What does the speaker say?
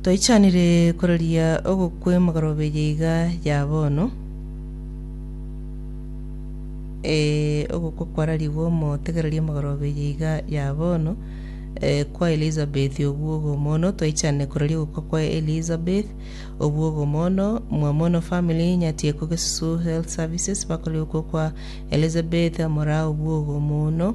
Toichanire kororia ogokwa emogoroberia iga ya bono, eh, ogokwa kwararigwe omotegereria emogoroberia iga ya bono, eh, kwa Elizabeth obwo ogomono, toichane kororia ogokwa kwa Elizabeth obwo ogomono, mwamono family, Nyatieko Gesusu Health Services bakorire okwo kwa Elizabeth amora obwo ogomono,